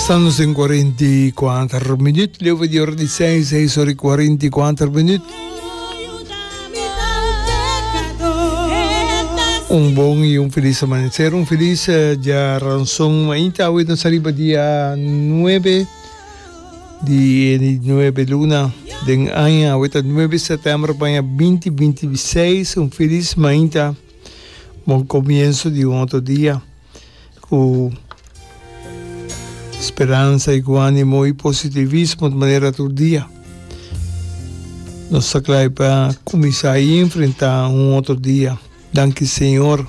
Salmo sin kuarenta i kuater minüt. Leu pa di ora di seis, seis ora i kuarenta i kuater minüt. Un bon i un filis amaneser. Un filis dia ranson. Ainta awe nos a riba dia nuebe di e nuebe luna den aña. Awe ta nuebe sètèmber baña binti binti i seis. Un filis mainta bon komienso di un otro dia. Ku speransa i ku animo i positivismo ta manera tur dia nos ta klai pa kuminsá i enfrentá un otro dia. Danki Señor.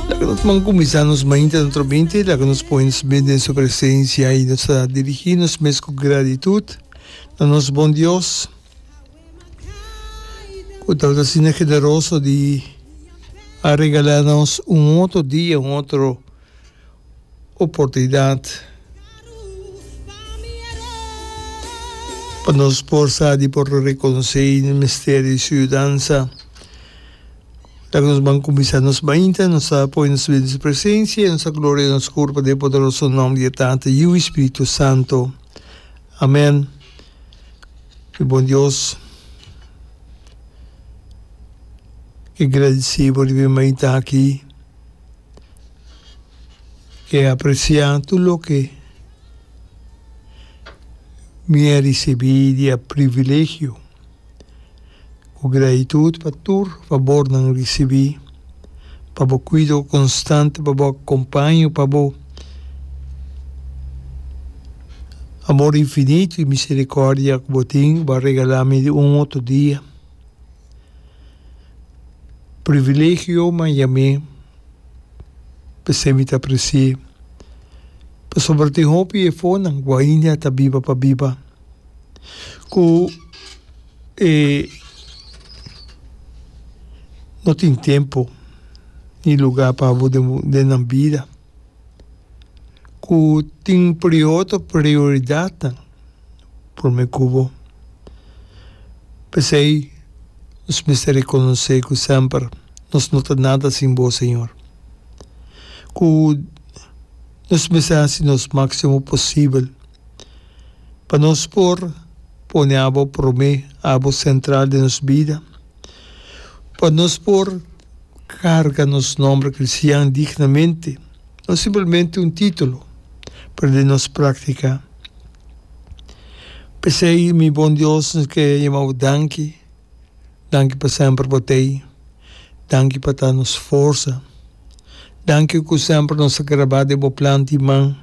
Laga nos man kuminsá nos mainta na trominti, laga nos pone nos mes den su presensia i nos ta dirigí nos mes ku gratitut na nos Bon Dios. Cu tal vez Sina Generoso di a regala nos un otro dia, un otro oportunidad pa nos por sa di por reconoce y nos mester di su yudansa. Dal cu nos ban cuminsa nos mainta, nos a pone nos dilanti su presencia y nos a gloria nos curpa den e poderoso nomber di e Tata, Yu y Spiritu Santo. Amen. Di bon Dios ke gradisí por di bin mai ta aki, ke apresiá tur loke mi a risibí dia privilegio. Ku gratitud pa tur fabor nan risibí, pa bo kuido konstante, pa bo akompaño, pa bo amor infinito i miserikòrdia ku bo tin, ku bo a regalá mi di un otro dia. Privilegio man yam'é p'esei mi ta apresi'é, pasobra tin hopi efonan ku ainda ta biba pa biba. ku e no tin tempu ni lugá pa abo den nan bida, ku tin prioto prioridatnan promé ku bo. P'esei nos mester rekonosé ku semper nos no ta nada sin bo, Señor. Ku nos mester hasi nos máksimo posibel. Pa nos por pone abo promé, abo sentral den nos bida, pa nos por carga nos nomber cristian dignamente, no simplemente un titulo, pero den nos practica. P'esey mi bon Dios nos ke yama Bo danki, danki pa semper Bo t'ey, danki pa ta nos forza, danki cu semper nos a graba den Bo plan di man.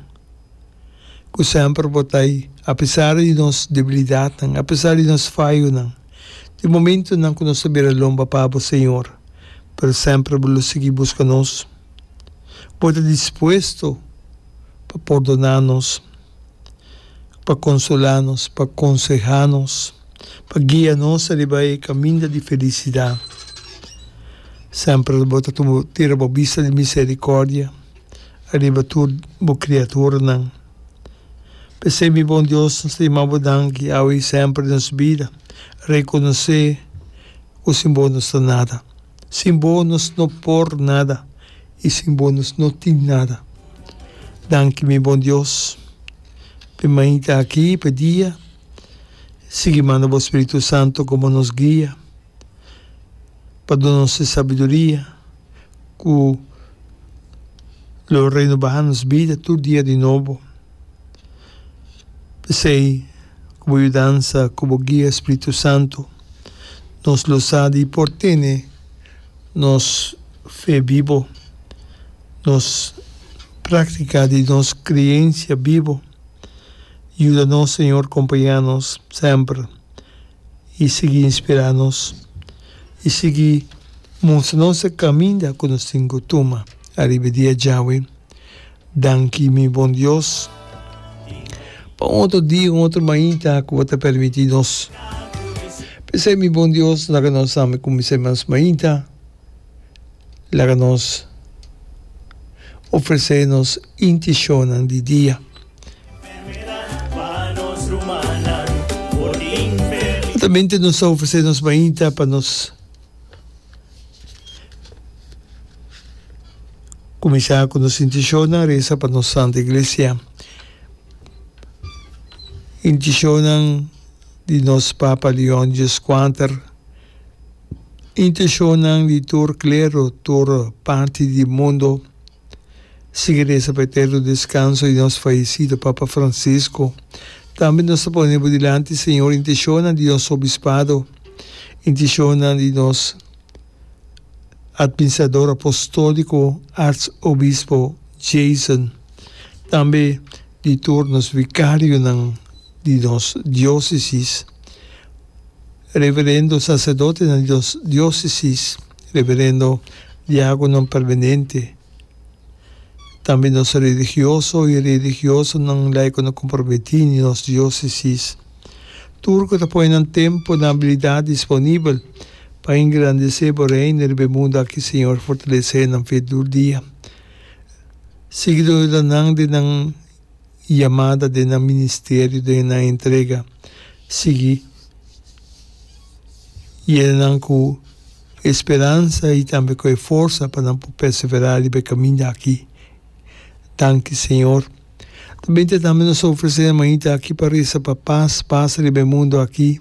ku semper bo ta ei, apesar di nos debilidatnan, apesar di nos fayonan, di momentunan ku nos ta bira lomba pa bo, Señor, pero semper bo lo sigui buska nos. Bo ta dispuesto pa pordoná nos, pa konsolá nos, pa konsehá nos, pa guia nos riba e kaminda di felisidat. Semper bo ta tira bo bista di miserikòrdia ariba tur bo kriaturanan. P'esei mi bon Dios, nos ta yama bo danki awe i semper den nos bida, rekonosé ku sin bo nos ta nada. Sin bo nos no por nada i sin bo nos no tin nada. Danki mi bon Dios p'e mainta aki, p'e dia. Sigui manda bo Spiritu Santu komo nos guia. pa duna nos e sabiduria ku lo renubá nos bida tur dia di nobo. P'esei, ku bo yudansa, ku bo guia spritu santu, nos lo sa di por tene nos fe bibo, nos práktika di nos kriensia bibo. Yuda nos, Señor, kompañá nos semper. i sigui inspirá nos i sigui mustra nos e kaminda ku nos tin ku tuma ariba e dia djawe. Danki mi Bon Dios pa un otro dia, un otro mainta ku bo ta permití nos. P'esei mi Bon Dios, laga nos ami kumins'é mas mainta. Laga nos ofresé nos intishonnan di dia. Otamente nos ta ofresé nos mainta pa nos kuminsá ku nos intishonnan resa pa nos Santu Iglesia. Intishonnan di nos Papa Leon Djis Kuater. Intencionnan di tur klero, tur parti di mundo. Sigui reza pa e eterno descanso di nos fayecido Papa Francisco. Tambe nos ta pone bo dilanti, Señor, intencionnan di nos Obispado, intencionnan di nos Administrador Apostolico, Arzobispo Jason, tambe di tur nos Vicarionan di nos Diocesis, Reverendo Sacerdotenan di nos Diocesis, Reverendo Diagonan Permanente, tambe nos Religioso y Religiosanan laico na comprometí di nos Diocesis, tur cu ta pone nan tempo, nan abilidad disponibel pa engrandece Bo Reino riba e mundo aki, Señor, fortalece nan fe tur dia. Siguidorenan di nan. Yamada den nan ministerio den nan entrega sigui yena nan cu e speransa y tambe cu e forsa pa nan por perseverá riba e caminda aki. Danki Señor. Ta binte tambe nos ta ofrece e mañita aki pa reza pa paz, paz riba e mundo aki.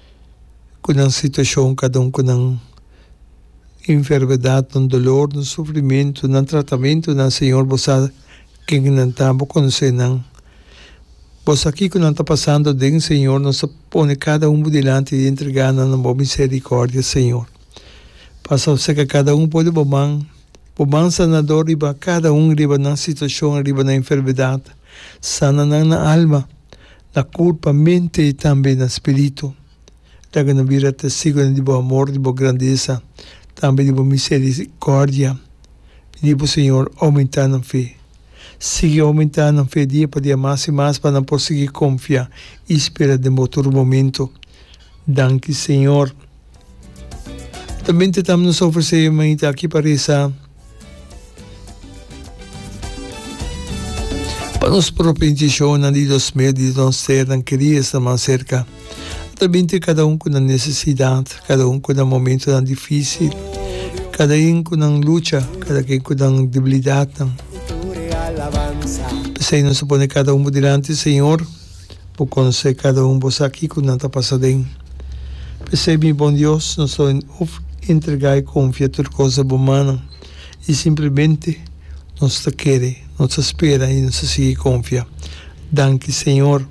ku nan situashon, kada un ku nan enfermedad, nan dolor, nan sufrimentu, nan tratamentunan, Señor, Bo sa ken nan ta, Bo konosé nan. Bo sa kiko nan ta pasando aden, Señor. Nos ta pone kada un bo dilanti i entregá nan na Bo miserikòrdia, Señor. Pasa bo seka kada un por di Bo man, Bo man sanadó riba kada un, riba nan situashon, riba nan enfermedad. Sana nan na alma, Na koer pa mente i tambe na spiritu. Laga nan bira testigunan di bo amor, di bo grandesa, tambe di bo miserikòrdia. Pidi bo Señor oumentá nan fe. Sigui oumentá nan fe dia pa dia mas i mas pa nan por sigui konfia i spera den bo tur momentu. Danki Señor. Ta binti tam nos a ofresé e mainta aki pa resa pa nos propi intenshonan di dos mil diezdos ser nan kerí esnan mas serka. A ta binti kada un ku nan nesesidat, kada un ku nan momentunan difísil, kada ein ku nan lucha, kada ken ku nan debilidatnan. P'esei nos a pone kada un bo dilanti, Señor. Bo conse cada un bo sa kico nan ta pasa den. P'esey mi bon Dios, nos lo hof entrega y confia tur cos a bo manan, y simplemente nos ta kere, nos ta spera y nos ta sigui confia. Danki Señor.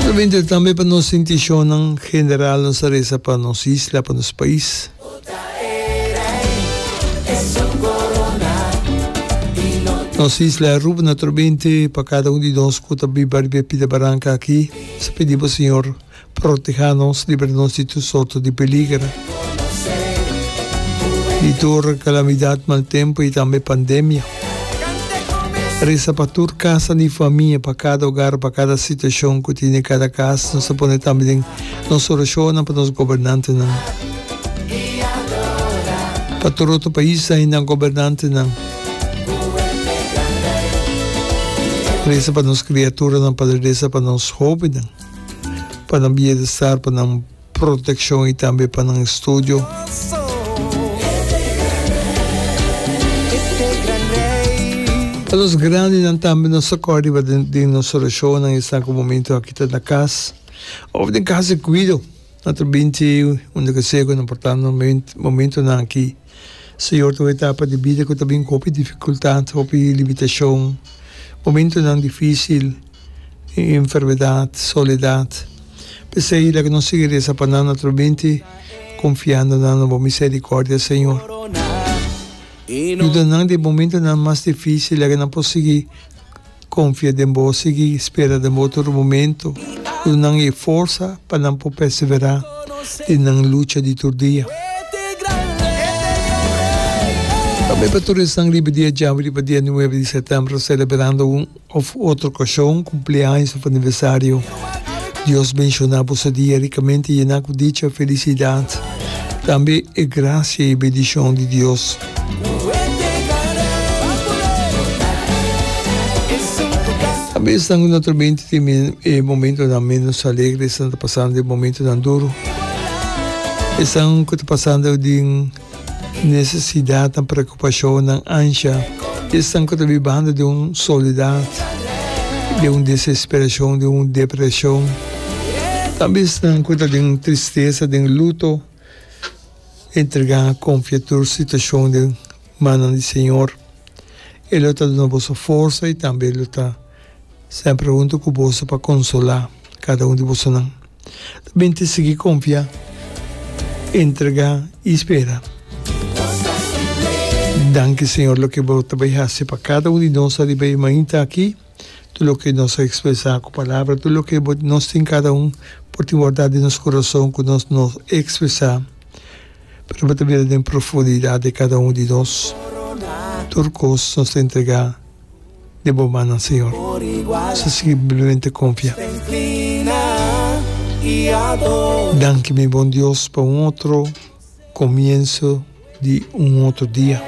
Simplemente tambe pa nos inticion nan general nos ta resa pa nos isla, pa nos pais. Nos isla Aruba na tro binte pa cada un di nos cu ta biba riba e pida baranca aki. Nos ta pidi bo Señor, proteha nos, libra nos di tur sorto di peliger, di tur calamidad, mal tempo y tambe pandemia. Reza pa tur casanan y famia, pa cada hogar, pa cada situacion cu tin den cada cas. Nos ta pone tambe den. nos orashonnan pa nos gobernantenan, pa tur otro paisnan i nan gobernantenan. Resa pa nos kriaturanan, Pader resa pa nos hóbennan, pa nan bienestar, pa nan protekshon i tambe pa nan estudio. Pa nos grandenan tambe nos ta kòrda riba den nos orashonnan esnan ku momentu aki ta na kas. Of den casa di cuido. Nan ta binti unda cu sego nan por ta na momentonan aki. Señor ta un etapa di bida cu ta bin cu hopi dificultad, hopi limitacion, momentonan dificil, enfermedad, soledad. P'esey laga nos sigui reza pa nan atrò binti confiando nan na bo misericordia, Señor. Yuda nan den momentonan mas dificil, laga nan por sigui Confia den Bo, sigui spera den Bo tur momento, duna nan e forsa pa nan por persevera den nan lucha di tur dia. Tambe pa tur esnan riba dia djawe riba dia nuebe di setembro celeberando un of otro ocasion, cumpleaños of aniversario. Dios benciona bo su dia ricamente yena cu dicha, felicidad, tambe e gracia y e bendicion di Dios. A besnan cu nuestro mente tin e momentonan menos alegre esnan ta pasando den momentonan duro. Esnan cu ta pasando den necesidadnan, preocupacionnan, ansha. Esnan cu ta bibando den un soledad, den un desesperacion, den un depresion. Ta besnan cu ta den tristeza, den luto. Entrega a konfia tur situashon den mannan di Señor. E lo ta duna boso forsa i tambe e lo ta semper huntu ku boso pa konsolá kada un di bosonan. Ta bin te sigui konfia, entrega i spera. Danki Señor loke bo ta bai hasi pa kada un di nos ariba e mainta aki. Tur loke nos a ekspresá ku palabra, tur loke bo nos tin kada un por tin wardá den nos kurason ku nos no ekspresá, pero bo ta bira den profundidat di kada un di nos. Tur kos nos ta entregá den bo mannan, Señor. Nos a sigui simplemente konfia. Danki, mi bon Dios, pa un otro komienso di un otro dia.